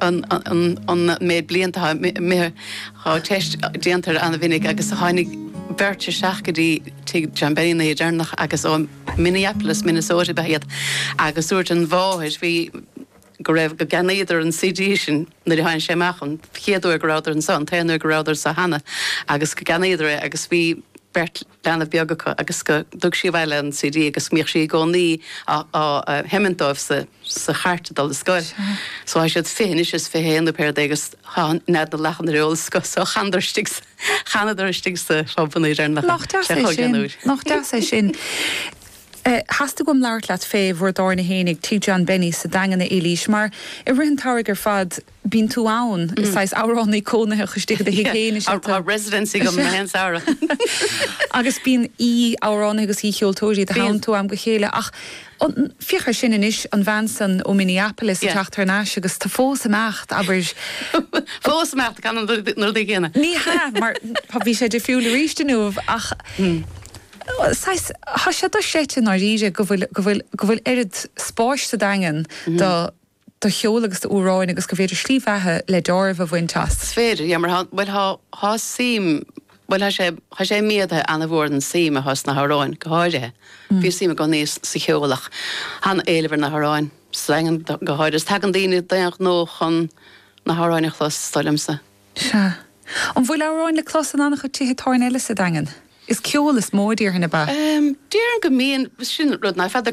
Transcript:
an méid blianta a mbíodh teist déanta air an-mhinic agus tháinig beirt isteach go dtí tigh John Benny an oíche deireanach agus ó Minneapolis, Minnesota ab ea iad agus dúirt an mháthair bhí go raibh, go gceannaíodar an CD sin nuair a tháinig sé amach an chéad uair go rabhadar anseo, an t-aon uair go rabhadar anseo cheana agus go gceannaíodar é agus bhí beirt. leanbh beag acu agus go dtug sí abhaile an CD agus go mbíodh sí i gcónaí á sheimint dóibh sa chairt ag dul ar scoil. So tá siad fiche anois is fiche haon pé rud é agus tá nead na lachan ar eolas acu so chanadar istigh sa, chanadar istigh sa phub anoir ar na, Nach deas é sin, nach deas é sin. Theastaigh uaim labhairt leat fé bhur dtábhairne fhéinig, Tigh John Benny sa Daingean a Eilís, mar i rith an tsamhraidh ar fad, bíonn tú ann, is saghas amhránaí cónaitheach istigh i do thigh féin is ea tú. Tá residency agam gach aon samhradh. Agus bíonn aoi-amhránaithe agus aoi-cheoltóirí i do theannta ó am go chéile. Ach féach air sin anois, an bhean san ó Minneapolis ag teacht thar n-ais agus tá fós ag imeacht, abair. Fós ag imeacht, ag canadh na rudaí céanna. Ní hea, mar bhí sé difriúil arís inniu. Ach saghas, tá sé dochreidte i ndáiríre go bhfuil, go bhfuil, go bhfuil oiread spáis sa Daingean do, do cheol agus d'amhráin agus gur féidir slí bheatha le dealramh a bhaint as. 'S féidir, yeah, mar tá, bhuel, tá, tá suim, bhuel, tá sé, tá sé méadaithe an-mhór an suim atá sna hamhráin go háirithe. Bhí suim i gcónaí sa cheol ach tá an-éileamh ar na hamhráin, sa Daingean go háirithe. Is tagann daoine d'aon ghnó chun na hamhráin a chlos, is dóigh liomsa. Sea. An bhfuil amhráin le clos in an-chuid tithe tábhairne eile sa Daingean? Is ceol is mó a déarfainn, ab ea? Déarfainn go mbíonn, sin rud nach fada.